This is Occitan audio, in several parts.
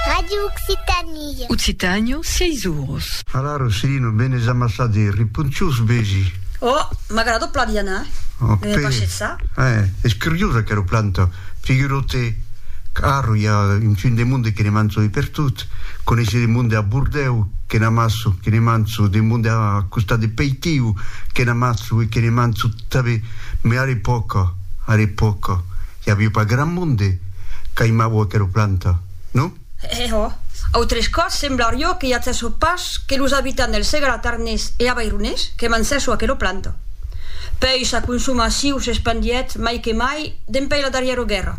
Radio Occitanie. Occitània, sièis oros. Hala, Rossirino, ben es amassat e riponciós, vesi. Ò, m'agrada plan Diana, me me paishet ça. Eh, es curiosa aquera planta, figurau-te qu'arro i a un fin de monde que ne manço de pertot, coneissi de monde a Bordèu que n'amasso, que ne manço, de monde a costat de Peitiu que n'amasso e que ne manço tanben, mai ara epòca, ara epòca. I aviu pas gran monde qu'aimavo aquela planta, non? E ò! Autres còps semblarió que j'atzesso pas que los abitants del Segre Atarnés e Avaironés que mancesso aquela planta. Pèi sa consomaciu s'espandièt mai que mai dempèi la darrièra guèrra,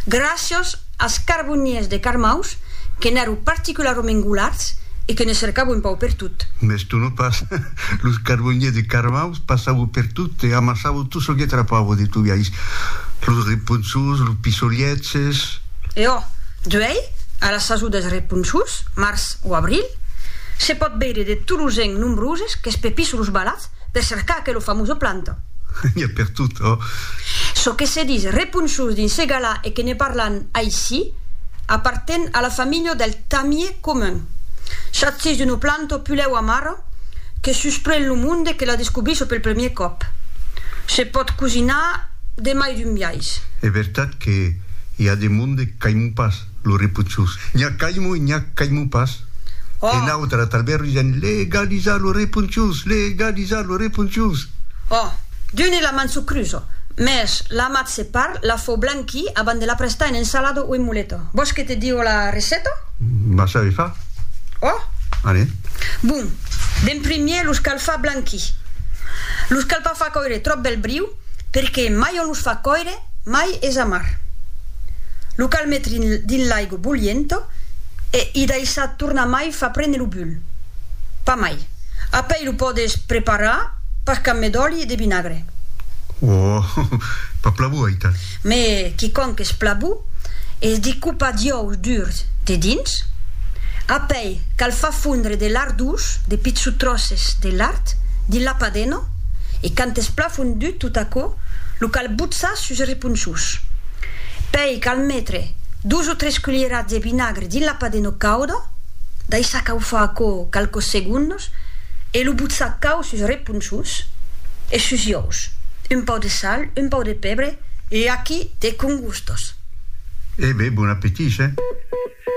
gràcias as carboniers de Carmaus que n'èro particularament golards e que ne cercavo un pau pertot. Mès tu non pas! Los carboniers de Carmaus passavo pertot e amassavo Tu çò que trapavo de tu viais. Los reponçons, los pissoliètges. E ò, d'uèi, a la sason dels reponçons, març o abril, se pòt veire de tolos en nombroses que espepissa los balats per cercar aquela famosa planta. N'i a per tot, ò. Çò que se dis reponçons dins ce galà e que ne parlan aicí, aparten a la familha del tamier. comun. Chassis d'una planta o pulèu amara que susprèn lo monde que la descobrís pel premier còp. Se pòt cosinar de mai d'un biais. Es vertat que i a de monde qu'aimu pas lo reponchós. N'i a qu'aimu e n'i a qu'aimu pas. E nautra talbèr risèn legalizar lo reponchós, legalizar lo reponchós. Ò, d'un e la man s'o crusa, mès l'amat se parl, la fau blan Qui aban de la prestar en ensalada o en muleta? Vòs que te digo la receta? Vas saber far. Ò? Allez. Bon, d'en primier los cal far blanquir. Los cal pas far còire tròp del briu perque mai on los fa còire mai es amar. Lo cal metre dins l'aigo bolhienta e i daissar tornar mai fa prene lo bulh. Pas mai. Apèi lo pòdes preparar pas qu'amb d'òli e de vinagre. Ohh! Pas plabu aital. Me quicònc es plabu, es de copar d'jòus durs dedins, apèi cal far fondre de lard dous, de pitsu tròces de lard, dins la padena e quand es plan fondut tot aquò lo cal botzar sus es reponçons. Pèi cal metre dos o tres culierats de vinagre Dins la padena cauda, daissar caufar aquò qualques segondes e lo botzar cau sus reponchons e sus iòus, un pauc de sal, un pauc de pebre e aquí te congustas. E be, bon appetit, che?